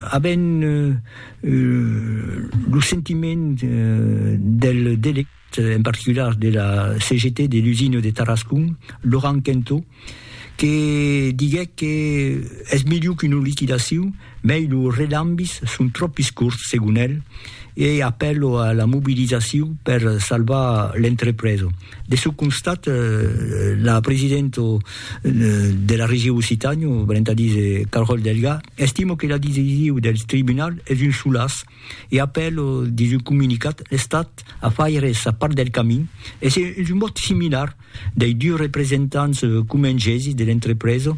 Avèm lo sentiment del delegat en particular de la CGT de l'usina de Tarascon, Laurent Quentot, que diguèt que es melhor qu'una liquidacion, mai los relambis son tròpis corts, segon el, e apèlo a la mobilizacion per salvar l'entrepresa. De çò constat, la presidenta de la Region Occitània, valent a díser Caròl Delga, estima que la decision del tribunal es un solàs e apèla, dins un comunicat, l'Estat a faire sa part del camin e se un vòt similar dei dus representants comengesis de l'entrepresa,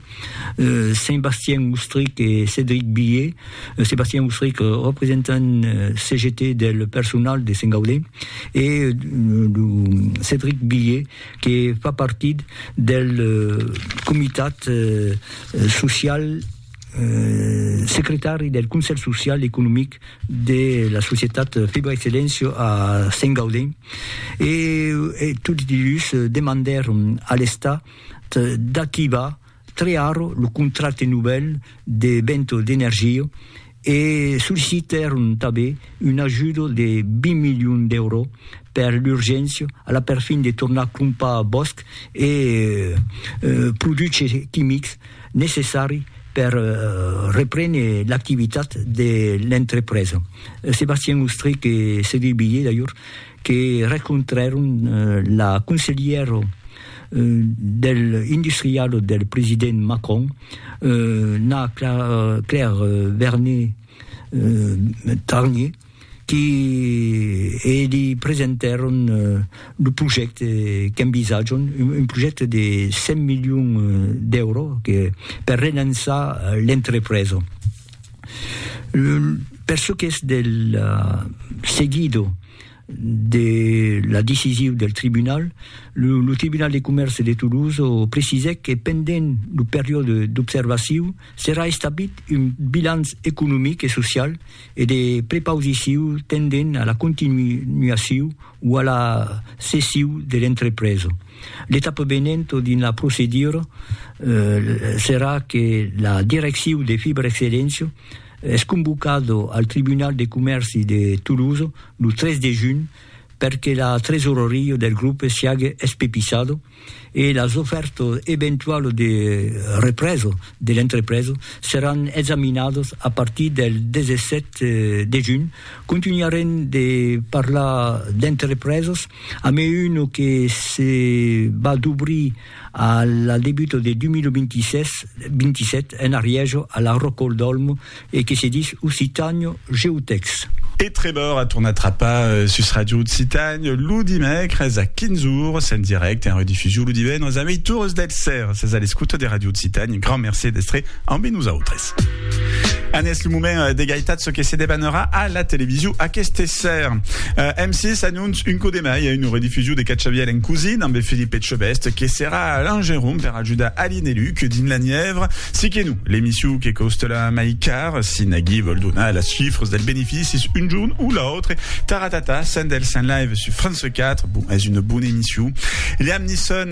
Saint-Bastien Moustric e Cédric Billet, Sébastien Housseric, representant CGT del personal de Saint-Gaudé, e Cédric Billet, que fa partit del comitat social, secretari del Conselh Social e Economic de la societat Fibra Excellencio a Saint-Gaudé, e tots dilhus demandèron a l'Estat d'activar Triaro lo contracte novèl de Vento d'Energia e sollicitèron tanben un ajudo de 20 milions d'euro per l'urgéncia a la perfin de tornar crompar bòsc e produches quimics necessari per reprene l'activitat de l'entrepresa. Sébastien Austric e Cédric Billé, d'alhors, que rencontrèron la conselhièra del industrialo del president Macron n'a Claire Vernet Tarnier qui e li presentèron lo projècte qu'envisatjon, un projècte de 100 milions d'èuro per relançar l'entrepresa. Per çò qu'es del seguido, de la decisiu del tribunal, lo Tribunal de Comèrce de Toulouse precisèc que pendent lo periòde d'observaciu serà establit un bilanç economic e social e de prepausiciu tendent a la continuaciu o a la cessiu de l'entrepresa. L'etapa venenta dins la procedura serà que la direcciu de Fiberexcelléncia Es convocado al Tribunal de Comèrci de Toulouse lo 3 de junh per que la tresoraria del grop siague espepisado e las ofèrtas eventualas de represa de l'entrepresa seràn examinadas a partir del 17 de junh. Contunharem de parlar d'entrepresas. A me un que se va dobrir A la debuta de 2026-27 en arrièja a la Rocol d'Olmo e que se dis Occitània GeoText. E Trevor a tornat trapar sus Ràdio Occitània lo dimècres a 15 ores en dirècte e en redifusion lo divendres a meitures del sèra. Sètz a l'escota de Ràdio Occitània. Grand mercé d'èstre ambe nosautres. En es le moment euh, d'egalitat ce que se debanera a la television aquest esser. Euh, M6 annonce un coup de mai a une rediffusion de Catxaviel en cousine amb Philippe Etchebest que serà l'engerum per ajudar Aline et Luc dins la Nièvre. Si que nous, l'émission que coste la mai car, si Nagui vol donar les chiffres del bénéfice une journée ou l'autre, taratata, sendel saint live sur France 4, bon, est une bonne émission. Liam Nisson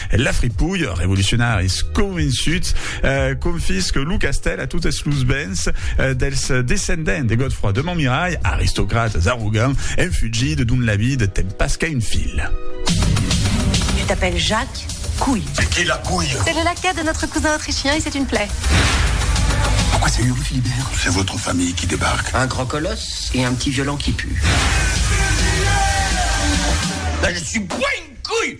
La fripouille, revolucionaris convençuts, confisque lo castèl a totes los bens dels descendents de Godefroi de Montmirai, aristocrates arrogants, en fugida dont la vida ten pas qu'a un fil. Tu t'appelles Jacques, couille. Mais qui est la couille? C'est le laquais de notre cousin autrichien et c'est une plaie. Pourquoi c'est Uri Philibert? C'est votre famille qui débarque. Un grand colosse et un petit violon qui pue. Là, je suis pas une couille!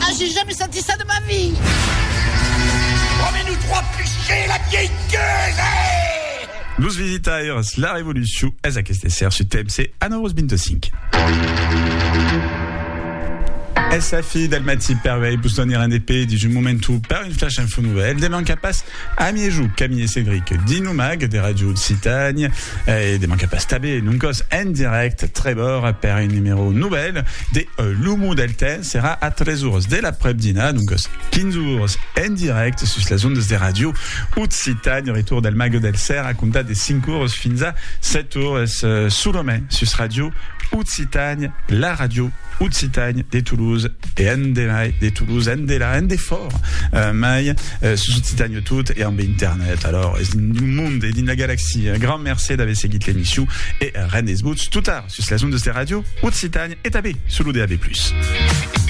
Ah j'ai jamais senti ça de ma vie. Trois menus, trois pluchers, la vieille gueuse! Los visitaires, la revolucion es aqueste esser su TMC a 9h25. Es la fi del matí per vei vos donir un EP dins un momentu per un flash info nouvelle. Deman cap pas a miejou Camille e Cédric dins lo mag de Radio Occitània e deman cap pas tabé non còs en direct Trevor per un numèro nouvelle de L'Humo del Temps. Serà a 3 oras de l'aprèp-dinar, doncas 15 oras, en dirècte sus las ondas de Ràdio Occitània. Retorn del Mago del Cèr a comptar de 5 oras fins a 7 oras, solament sus Ràdio Occitània, la ràdio occitània de Toulouse e endemai de Toulouse, endelà, endefòra mai, sus Occitània. Tot e ambe internet alors es dins lo monde e dins la galaxia. Grand mercé d'aver seguit l'emission e rend es votz totar sus las ondes de Radio Occitània e tanben sul lo DAB+.